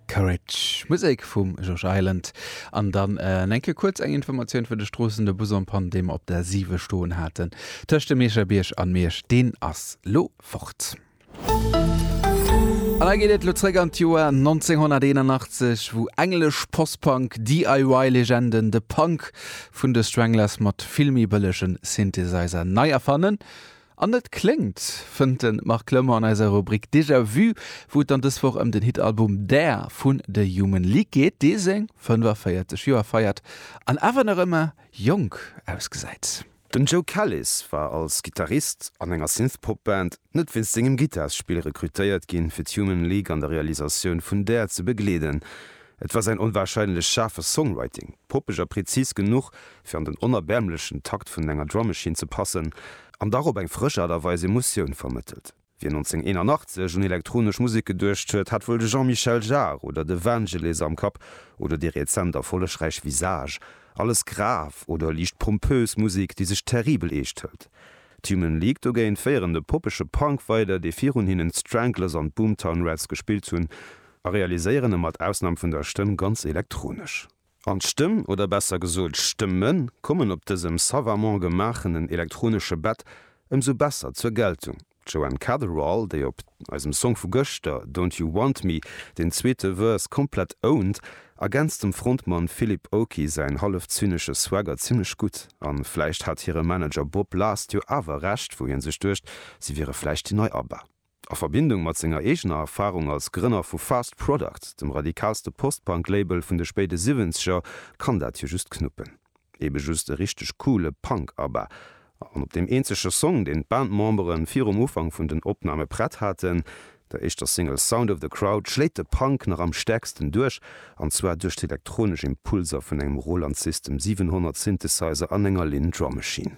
Courage, Musek vum George Island. An dann eng Kéier kuerz eng Informatioun fir de Stroossen, de Bus en panne, dee mer op der 7 stoen haten, tëscht dem Meecherbierg an Miersch, deen ass lo fort. An da geet et lo zréck an d'Joer 1981, wou englesch Post-Punk DIY-Legenden de Punk vun de Stranglers mat vill méi bëllegen Synthesizer nei erfannen. An net kléngt, fënnt de Marc Lemmer an eiser Rubrik Déjà Vu, wou et dann dës Woch ëm den Hit-Album Dare vun The Human League geet, dee seng 45 Joer feiert an awer nach ëmmer jonk ausgesäit. Den Joe Callis war als Gittarist an enger Synthpop-Band net wéinst sengem Gittarsspill rekrutéiert ginn, fir d'Human League an der Realisatioun vun Dare ze begleeden. Et war säin onwarscheinlech schaarfe Songwriting, poppeg a prezis genuch, fir an den onerbäermlechen Takt vun enger Drum Machine ze passen an dach op eng frësch Aart a Weis Emotioun vermëttelt. Wien 1981 un elektronesch Musek geduecht huet, hat wuel de Jean-Michel Jarre oder de Vangelis am Kapp, oder déi rezent erfollegräich Visage, alles grav oder liicht pompös Musek, déi sech terribel eescht hëlt. D'Human League dogéint féieren de poppege Punk weider, dee virun hinnen d'Stranglers an d'Boomtown Rats gespillt hunn, a realiséieren e mat Ausnam vun der Stëmm ganz elektronesch. An d'Stëmm, oder besser gesot Stëmme kommen op dësem savamment gemaachenen elektronesche Bett ëmsou besser zur Geltung, d'Joanne Catherall, déi op eisem Song vu gëschter Don't You Want Me den zweete Verse komplett ownt, ergänzt dem Frontmann Philip Oakey säin hallef zynesche Swagger zimmlech gutt. A vläicht hat hire Manager Bob Last jo awer Recht, wou hie sech duecht, si wiere vläicht déi nei ABBA. A Verbindung mat senger eegener Erfarung als Grënner vu Fast Product, dem radikalste Post-Punk-Label vun de spéide Siwwenzeger, kann dat jo just knuppen. Ebe just e richteg coole Punk-ABBA. An op deem eenzege Song, deen d'Bandmembere virum Ufank vun den Opname prett haten, der éischter Single Sound of the Crowd, schléit de Punk nach am stäerksten duerch, an zwar duerch d'elektronesch Impulser vun engem Roland System 700 Synthesizer an enger Linn Drum Machine.